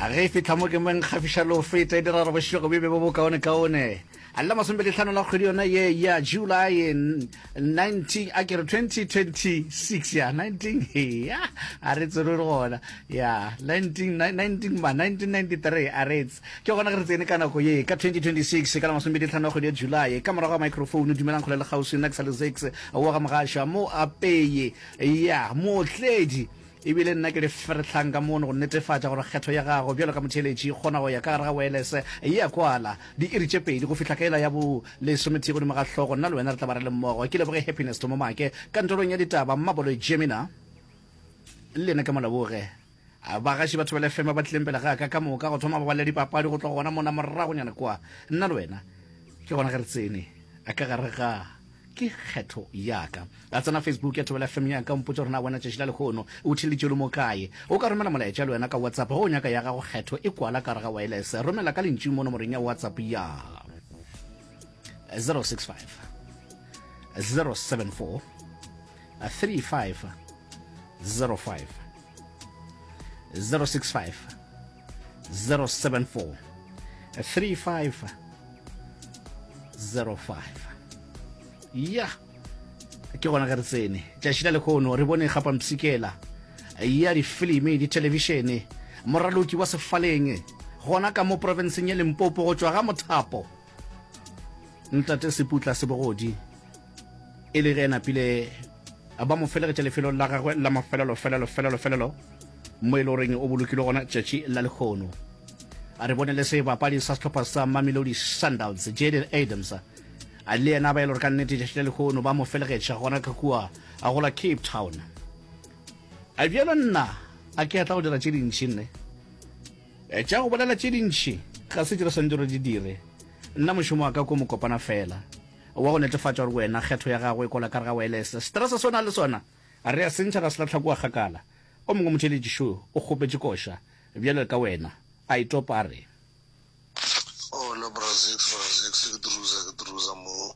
a ge e fitlha mo ke mo nkgafiša le go feta e dira re bošego bebe bo bokaone-kaone a le masomepedi tlhano la kgwedi yona ye ya july 19 a kere 2026 ya 19 ya a re tsere le gona ya 19 ma 1993 a retse ke gona ge re tsene ka nako ye ka 2026 ka la masomepedi tlhano ya kgwedi ya july ka morago ga microphone dumelang kgole le kgauswi nna ke sa le zex wa ga mogaša mo apeye ya mootledi E bile nna ke le ferhlang ka mono go netefatša gore kgetho ya gago bjalo ka motheeletši e kgona go ya ka gare ga waelese e a kwala. Diiri tše pedi go fihla ka ela ya bo lesomethee godimo ga hlogo, nna le wena re tla ba re le mmogo. Ke leboge Happiness Thomomake, kantorong ya ditaba, Mmaboloyi Jemina le yena ke mo leboge. Bagaši ba Thobela FM ba ba tlileng pele ga ka ka moka go thoma ba ba le dipapadi go tloga gona mona moragonyana kwa, nna le wena ke gona ge re tsene ka gare ga. ke kgetho yaka. Ka tsena Facebook ya Thobela FM yaka, o mpotše gore na wena tšatši la lehono o theleditše o le mo kae. O ka romela molaetša le wena ka WhatsApp ge o nyaka ya gago kgetho e kwala ka gare ga waelese. Romela ka lentšu mo nomorong ya WhatsApp ya 065 074 3505 065 074 35 05 ya ke gona ge re tsene tšatši la lekgono re bone gapampsikela ya difilimi dithelebishene moraloki wa sefaleng gona ka mo profenseng ya limpopo go tšwa ga mothapo ntate seputla sebogodi e le ge a napile ba mo felegetša lefelong la gagwe la mafelelo felelo felelo felelo mo e le goreng o bolokile gona tšatši la lekgono a re bone le sebapadi sa sehlopha sa mamelodi sundowns jaden adams a le yena ba e le gore ka nnete tšatši la lekgono ba mo felegetša gona ka kua a gola cape town a bjalo nna a ke a tla go dira tše dintši nne Tša go bolela tše dintši ga se tše re swanetše re di dire. Nna mošomo wa ka ke wo mokopana feela, wa go netefatša gore wena kgetho ya gago e kola ka re ga waelese. Seterese se o nago le sona re a se ntšha, ra se lahla kua kgakala. O mongwe motheeletši šo o kgopetše koša, bjalo ka wena, a e topa a re. Hola, Brazix, Brazix, ke druza, ke druza mo.